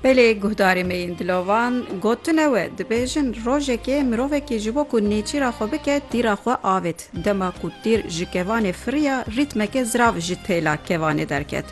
Belê guhdarê me yên dilovan gotine we dibêjin rojekê mirovekî ji bo ku nêçîra xwe bike tîra xwe avêt. Dema ku tîr ji kevanê firiya rîtmeke zirav ji têla kevanê derket.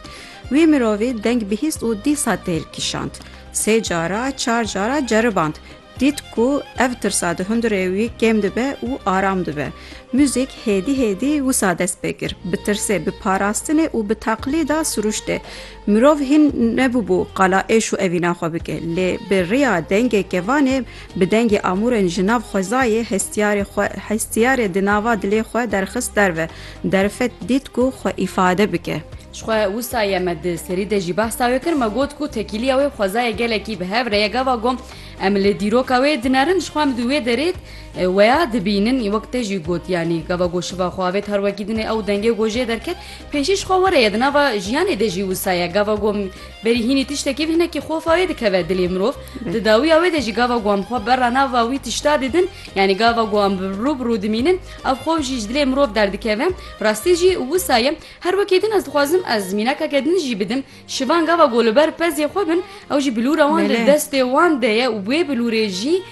Wî mirovî deng bihîst û dîsa têl kişand. Sê cara çar cara ceriband. Dît ku ev tirsa di hundirê wî kêm dibe û aram dibe. Muzîk hêdî hêdî wisa dest pê kir, bi tirsê, bi parastinê û bi teqlîda siruştê. Mirov hîn nebûbû qala êş û evîna xwe bike, lê bi riya dengê kevanê, bi dengê amûrên ji nav xwezayê hestiyarê xwe, hestiyarê di nava dilê xwe derxist derve, derfet dît ku xwe îfade bike. Jixwe wisa ye me di serî de jî behsa wê kir, me got ku tekîliya wê xwezayê gelekî bi hev re ye, gava gom Em li dîroka wê dinerin ji xwe midû wê derê weya dibînin wek te jî got yanî gava ku şiva xwe avê tarwekî dinê ew dengê ku jê derket pêşî ji xwe were ye di nava jiyanê de jî wisa ye gava ku berî hînî tiştekî hinekî xofa wê dikeve dilê mirov di dawiya wê de jî gava ku em xwe berra nava wî tişta didin yanî gava ku em rû bi rû dimînin ev xwe jî ji dilê mirov derdikeve rastî jî wisa ye her wekî din ez dixwazim ez mînakeke din jî bidim Şivan gava ku li ber pezê xwe bin ew jî bilûra wan di destê wan de ye û wê bilûrê jî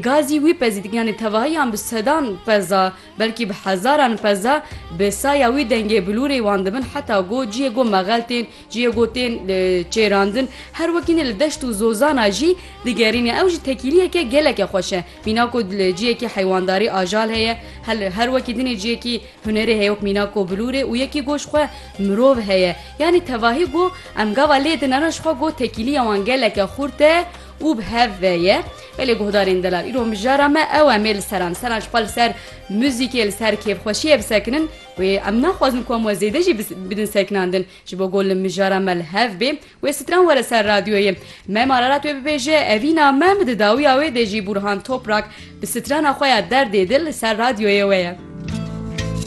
gazî wî pezî dikin yanî tevahiyan bi sedan peza belkî bi hezaran peza bi saya wî dengê bilûrê wan dibin heta ku ciyê ku mexel tên ciyê ku tên çêrandin her wekî ne li deşt û zozana jî digerîne ew jî tekîliyeke geleke xweş e. Mîna ku ciyekî heywandarî ajal heye, her wekî dinê ciyekî hunerê heye wek mîna ku bilûrê û yekî goş xwe mirov heye. Yanî tevahî ku em gava lê din re ji xwe ku tekîliya wan geleke xurt e û bi hev ve ye. Belê guhdarên delal îro mijara me ew em ê li ser em seran ji xwe li ser muzîkê li ser kêfxweşiyê bisekinin. Wê em naxwazin ku em we zêde jî bidin sekinandin ji bo ku li mijara me li hev bê. Wê stran were ser radyoyê. Me mararat wê bibêje evîna me bi di dawiya wê de jî Burhan Toprak bi strana xwe ya Derdê dil li ser radyoyê we ye.